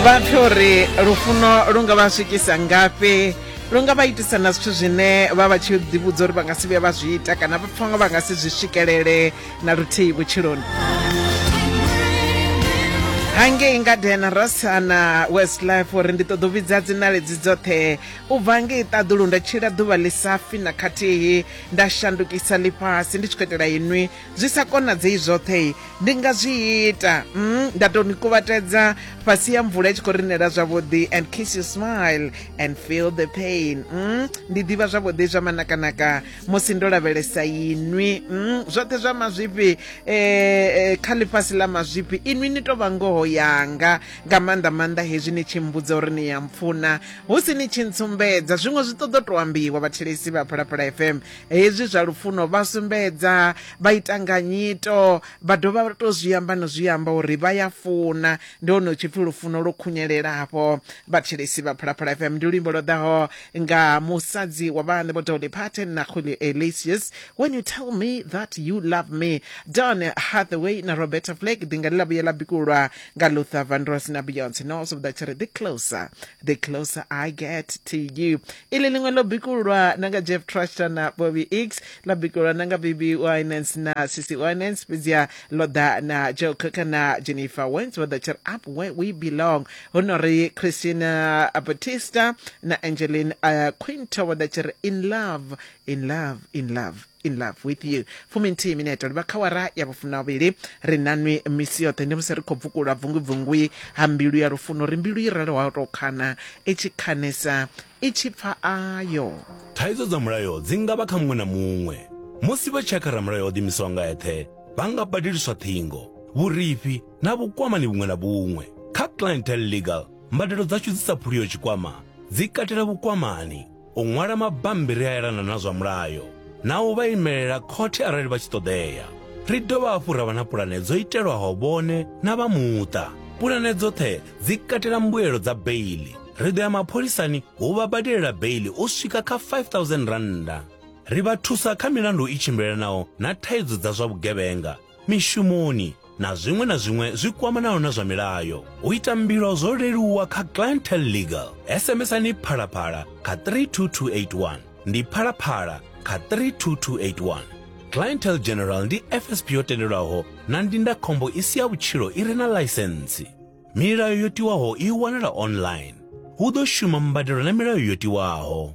vha pfhe uri lufuno lu nga vha swikisa ngafhi lu nga vha itisa na zwithu zwine vha vha tshi ḓivhudza uri vha nga si vhuya vha zwi ita kana vha pfha nga vha nga si zwi swikelele na luthihi vhutshiloni hangei ngadena rasana west life uri ndi ṱoḓa u vhidza dzinaledzi dzoṱhe u bva ngei ṱaḓulu nda tshila ḓuvha ḽi safi na khathihi nda shandukisa ḽifhasi ndi tshi khou itela inwi zwi sa konadzei zwoṱhe ndi nga zwi ita mm, nda tou ni kuvhatedza fhasi ya mvula i tshi khou rinela zwavhuḓi and kiss you smile and feel the pain mm, ndi ḓivha zwavhuḓi zwa manakanaka musi ndo lavhelesa inwi mm, zwoṱhe zwa mazwifhi eh, eh, kha ḽifhasi ḽa mazwifhi inwi ni tou vha ngoho yanga nga maanḓa maanḓa hezwi ni tshi mbudza uri ni ya mpfuna hu si ni tshi ntsumbedza zwiṅwe zwi ṱoḓo tou ambiwa vhathelesi vha phalaphala fm Hezwi zwa lufuno vha sumbedza, vha ita nga nyito, vha dovha vha tou zwi amba no zwi amba uri vha ya funa. Ndi hone hu tshi pfi lufuno lwo khunyelela afho. Vhathetshelesi vha Phalaphala FM ndi luimbo lwo ḓaho nga musadzi wa vhaṋe Vho Dolly Parton na Julio Iglesias, When You Tell Me That You Love Me. Don Hathaway na Roberta Flack ḓinga ḽi ḽa vhuye ḽa bikulwa nga Luther Vandross na Beyonce. Noah Sobudza tshi ri, The closer, the closer I get to you. ili liṅwe ḽo bikululwa na nga jeff truster na bobby x ḽa bikululwa na nga bb winans na cc winans fhedziha ḽo ḓa na joe coker na jennifer wens vho ḓa tshiri up where we belong hu no ri christina batista na angelin uh, quinto vho ḓa tshiri in love in love in love in love with you fuminthihi minete ri vha kha wara ya vhufunavhili ri nanwi misi yoṱhe ndi musi ri khou bvukula bvungubvungui ha mbilu ya lufuno ri mbilu i raloho tou khana i tshi khanesa i tshi pfa ayo thaidzo dza mulayo dzi nga vha kha muṅwe na muṅwe musi vha tshi ya kha ramulayo o ḓimisaho nga eṱhe vha nga badeliswa ṱhingo vhurifhi na vhukwamani vhuṅwe na vhuṅwe kha clientele legal mbadelo dzashu dzi sa phuliyo tshikwama dzi katela vhukwamani u ṅwala mabambiri a elana na zwa mulayo na u vha imelela khothe arali vha tshi ṱoḓea ri dovha hafhu ra vha na pulane dzo itelwaho vhone na vha muṱa pulane dzoṱhe dzi katela mbuelo dza beili ri ḓo ya mapholisani hu vha badelela beili u swika kha 5000 rannda ri vha thusa kha milandu i tshimbilelanaho na thaidzo dza zwa vhugevhenga mishumoni na zwiṅwe na zwiṅwe zwi kwamanaho na zwa milayo. U ita mbilo zwo leluwa kha Clientele Legal. SMSani Phalaphala kha 32281 ndi Phalaphala kha 32281. Clientele General ndi FSP yo tendelwaho na ndindakhombo i si ya vhutshilo i re na ḽaisentsi. Milayo yo tiwaho i wanala online. Hu ḓo shuma mbadelo na milayo yo tiwaho.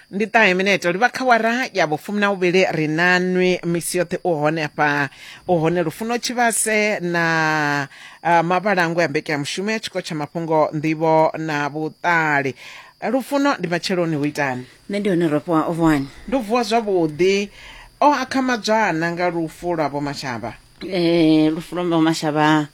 ndi ṱahe mineto livha kha wara ya vhufumi na vhuvhili ri na nwi misi yoṱhe u hone afha u hone lufuno tshivhase na uh, mavhalangwe a mbeke ya mushumo ya tshiko tsha mafhungo nḓivho na vhuṱali lufuno ndi matsheloni hu itani nṋe ndi hone rofhiwa o vuwani ndo vuwa zwavhuḓi o akhamadzwana nga lufu lwa vho mashavha um lufu lwa vho mashavha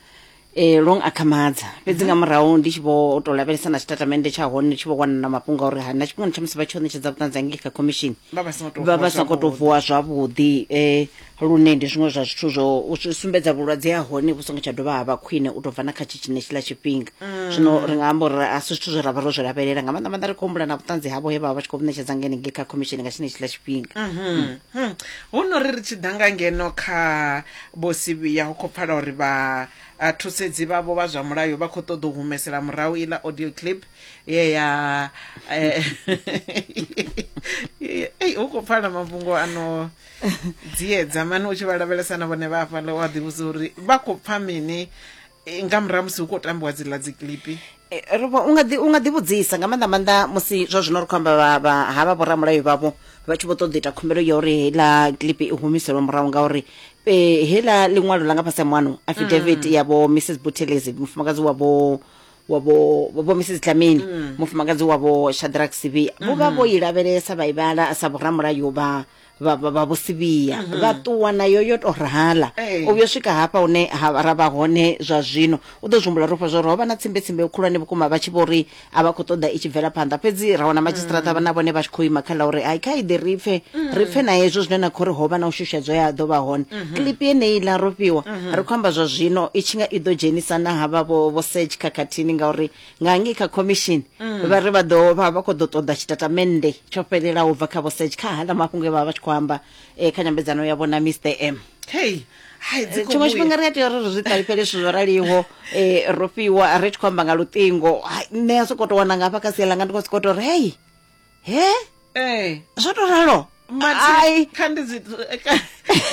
e, long akhamadza fhedzi nga murahu ndi tshi vho to lavhelesa na tshitatamennde tsha hone ndi tshi vho wana na mafhungo a uri ha na tshifhingani tsha musi vha tshi o ṋetshedza vhuṱanzi hangei kha khomishini vha vha songo tou vha vha sa khou tou vuwa zwavhuḓi eh, lune ndi zwiṅwe zwa zwithu zwo u zwi sumbedza vhulwadze ha hone vhu songo tsha dovha ha vha khwine u tou bva na kha tshi tshine tshiḽa tshifhinga zwino ri nga amba uri a si zwithu zwe ra vha ro zwi lavhelela nga maanḓa maanḓa ri khou humbula na vhuṱanzi havho he vha vha vha tshi khou vhu ṋetshedza ngenengei kha khomishini nga tshine tshiḽa tshifhinga hu no ri ri tshi ḓa nga ngeno kha Vho Sibiya hu khou pfala uri vha thusedzi vhavho vha zwa mulayo vha khou ṱoḓa u humesela murahu iḽa audio clip ye ya ei hu khou pfala mafhungo ano dziedza mani u tshi vha lavhelesa na vhone vha hafhaḽa wa ḓivhudza uri vha khou pfha mini Eh, nga murahu musi hu khou tambiwa dziḽa dzi clipi Eh, ri vho- u nga ḓi- u nga ḓivhudzisa nga maanḓa maanḓa musi zwa zwino ri khou amba vha- vha- ha vha vhoramulayo vhavho vha tshi vho ṱoḓa u ita khumbelo ya uri heiḽa clip i humiselwe murahu ngauri eh, heiḽa ḽiṅwalo ḽa nga fhasi ha muano affidavit ya vho mrs butelezi mufumakadzi wa vho wa vho wa vho mrs dlamini mufumakadzi wa vho shadrack sibi vho vha vho i lavhelesa vha i vhala sa vhoramulayo vha vha vha- vha vhusivhiya vha ṱuwa nayo yo to rala Ee. u vhuya swika hafha hune ha ra vha hone zwa zwino u ḓo zwihumbula rofha zwa uri ho vha na tsimbetsimbe khulwane vhukuma vha tshi vho ri a vha khou ṱoḓa i tshi bvela phanḓa fhedzi ra wana madzhisiṱiraṱa vha na vhone vha tshi khou ima kha ḽa uri ai kha iḓe ri pfe ri pfe na hezwo zwine na khou ri ho vha na u shushedzo ya ḓo vha hone klipi yeneyi ḽa rofhiwa ri khou amba zwa zwino i tshi nga i ḓo dzhenisa na havha vho vho sech khakhathini ngauri nga ngei kha khomishini mm. vha ri vha ḓo vha vha khou ḓo ṱoḓa tshitatamennde tsho fhelelaho bva kha vhosage kha hala mafhungo e vha vha tshi khou amba um kha nyambedzano ya vhona mr m hey eh, tshiṅwe tshifhinga ri a tea uri ri zwi ṱalifhele zwithu zwo raliho um ro fhiwa ri tshi khou amba nga luṱingo nṋe a sokou tou wana ngafha kha sia langa ndi khou sokou tou ri hei he eh zwo to ralo Ai. kha ndi dzi ka-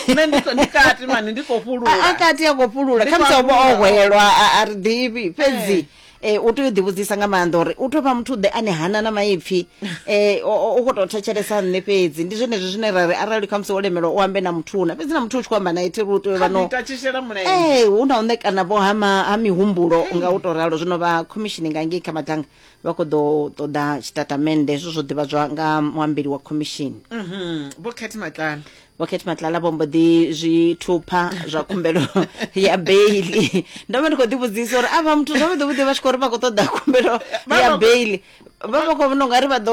nṋe ndi kho- ndi kati mani ndi khou a a fhulula kati a khou fhulula Ndi khamusi khou ovha o fhulula. hwelwa a- a ri ḓivhi fhedzi eh, u tea u ḓivhudzisa nga maanḓa uri u tou vha muthu ḓe ane hana na maipfi eh, o- o- u khou tou thetshelesa nṋe fhedzi ndi zwenezwi zwine ra ri arali khamusi wo lemelwa u ambe na muthu una fhedzi na muthu u tshi khou amba nae thiri u tea u vha no ita tshishela mulenzhe ee hu na u ṋekana vho ha ma- ha mihumbulo nga u tou ralo zwino vha khomishini nga ngei kha madanga vha khou ḓo ṱoḓa tshitatamennde hezwo zwo ḓivhadzwa nga muambeli wa khomishini mhm. vho khethi matlala vho khethi matlala vho mbo ḓi zwi thupha zwa khumbelo ya beili ndo vha ndi khou ḓivhudzisa uri a vha muthu zwavhuḓi vhuḓi vha tshi khou ri vha khou ṱoḓa khumbelo ya beili vha vha khou vhona ungari vha ḓo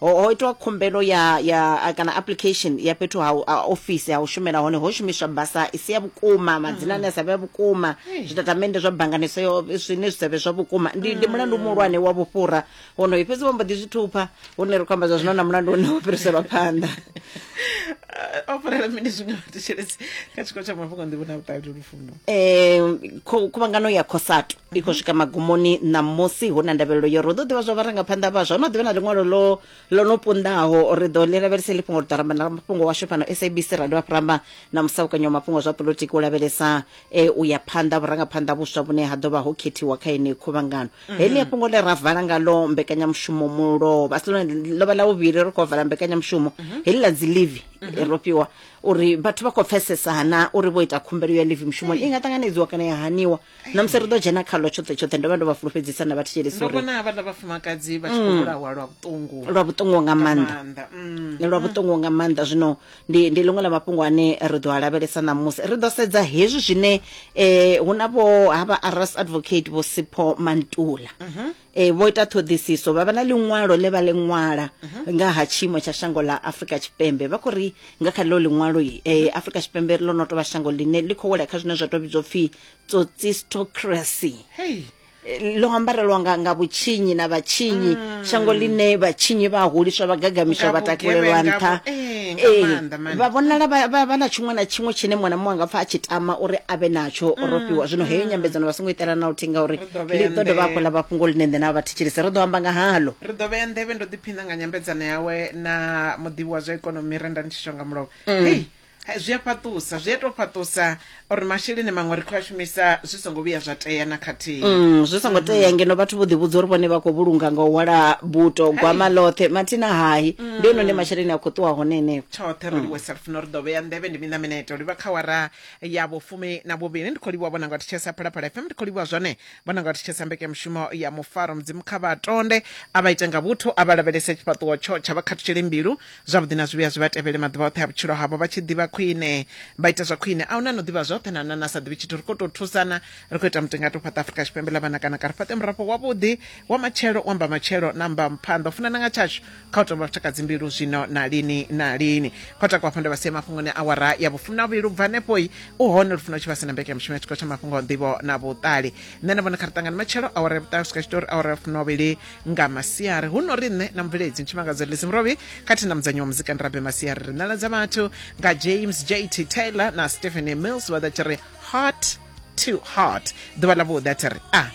ho, ho itwa khumbelo ya ya a, kana application ya fhethu ha u- a, ofisi ha u shumela hone ho shumiswa basa i si ya vhukuma madzina ane a sa vhe a vhukuma zwitatamennde zwa banngani so yo- zwine zwi sa vhe zwa vhukuma ndi ndi mulandu muhulwane wa vhufhura wonoyo fhedzi vho mbo ḓi zwi thupha hune ri khou amba zwa zwino na mulandu une wo fhiriselwa phanḓa o fhirela mini zwiṅwe vhathetshelesi kha tshiko tsha mafhungo nḓivho na vhuṱali lufuno um khuvhangano ya khosato i khou swika magumoni ṋamusi hu na ndavhelelo yo ro ḓo ḓivha zwa vharangaphanḓa vhaswa hu na ḓivha na ḽiṅwalo lo lo no pundaho ri ḓo ḽi lavhelese ḽi fhungo ri ḓo ramba na mafhungo washu fhano sabc ra dovha ramba na musaukanyi wa mafhungo zwa polotiki u lavhelesa e u ya phanḓa vhurangaphanḓa vhuswa vhune ha ḓo vha ho khethiwa kha yeneyi khuvhangano heḽi a fhungo ḽe ra vala ngalo mbekanyamushumo mulovha a si ḽone ḽo vha ḽa vhuvhili ri khou vala mbekanyamushumo heḽi ḽa dzi livi ro fhiwa uri vhathu vha khou pfesesa na uri vho ita khumbelo ya live mushumoni i nga ṱanganedziwa kana ya haniwa na musi ri ḓo dzhena khalo tshoṱhe tshoṱhe ndo vha ndo vha fulufhedzisa na vhathetshelesi ndo vhona havhaḽa vhafumakadzi vha tshi khou mm. vhulawa lwa vhuṱungu lwa vhuṱungu nga maanḓa mm. lwa vhuṱungu nga maanḓa zwino ndi ndi ḽiṅwe ḽa mafhungo ane ri ḓo a lavhelesa ṋamusi ri ḓo sedza hezwi zwine um hu na vho havha aras advocate vho sipho mantula mhm. e, vho ita ṱhoḓisiso vha vha na ḽiṅwalo ḽe vha ḽi ṅwala nga ha tshiimo tsha shango ḽa afrika tshipembe vha khou ri nga kha ḽo ḽiṅwalo um afrika tshipembe ḽo no tou vha shango ḽine ḽi khou wela kha zwine zwa tou vhidzwa pfhi tsotsistocracy hei ḽo ambarelwa nga, nga vhutshinyi na vhatshinyi mm. shango ḽine vhatshinyi vha huliswa vha gagamiswa vha takulelwa nṱha eh, eh, vha vhonala vha na tshiṅwe na tshiṅwe tshine muṅwe na muṅwe anga pfa a tshi tama uri a vhe natsho ro mm, fhiwa zwino heyo mm. nyambedzano vha songo itela na luthihi ngauri Ḓo ḽi vhea ḓo dovha hafhu nḓevhe- ḽa vha fhungo ḽine nṋe na vha thetshelese ri ḓo amba nga haḽo ri ḓo vhea nḓevhe ndo ḓiphina nga nyambedzano yawe na muḓivhi wa zwa ikonomi renda ni tshi shonga mulovha hei ha- zwi a fhaṱusa zwi a tou fhaṱusa uri masheleni maṅwe ri khou a shumisa zwi songo vhuya zwa tea na khathihi Mm, zwi songo tea ngeno vhathu vho ḓivhudza uri vhone vha khou vhulunga nga u hwala buto gwama ḽoṱhe mathina hahi ndi hone hune masheleni a khou ṱuwa hone henefho tshoṱhe ro livhuwa sa lufuno ri ḓo vhea nḓevhe ndi miṋa mineto livha kha wara ya vhufumi na vhuvhili ndi khou livhuwa vhona nga thetshelesa phalaphala fm ndi khou livhuwa zwone vhona nga thetshelesa mbekanyamushumo ya mufaro mudzimu kha vha tonde a vha ite nga vhuthu a vha lavhelese tshifhaṱuwo tsho tsha vha khathutshele mbilu zwavhuḓi na zwivhuya zwi vha tevhele maḓuvha oṱhe a vhutshilo havho vha tshi ḓivha khwine vha ita zwa khwine a huna no ḓivha zwoṱhe na na na sa ḓivhi tshithu ri khou tou thusana ri khou ita mutengato fhaṱa afurika tshipembe ḽa vhana kana ka ri fhaṱe murafho wavhuḓi wa matshelo wa mba matshelo na mba mphanḓa u funana nga tshashu kha u tovha vhatakadzi mbilu zwino na lini na lini kho takwa fhanda vha sia mafhungoni awara ya vhufumi na vhuvhili ubva hanefhoi u hone lufuna u tshi vha sina mbeke ya mushumo ya tshikolo tsha mafhungo nḓivho na vhuṱali nṋe na vhona kha ri ṱangane matshelo awara ya vhuṱali u swika tshitori awara ya fumi vhili nga masiari hu no ri nṋe na mubveledzi ntshimangadzo lisi murovhi khathihi na mudzanyi wa muzika ndirabe masiari ri ṋaladza vhathu nga james jt taylor na stephanie mills vha ḓa tshi ri heart to heart ḓuvha ḽa vhuḓi a thi ri a ah.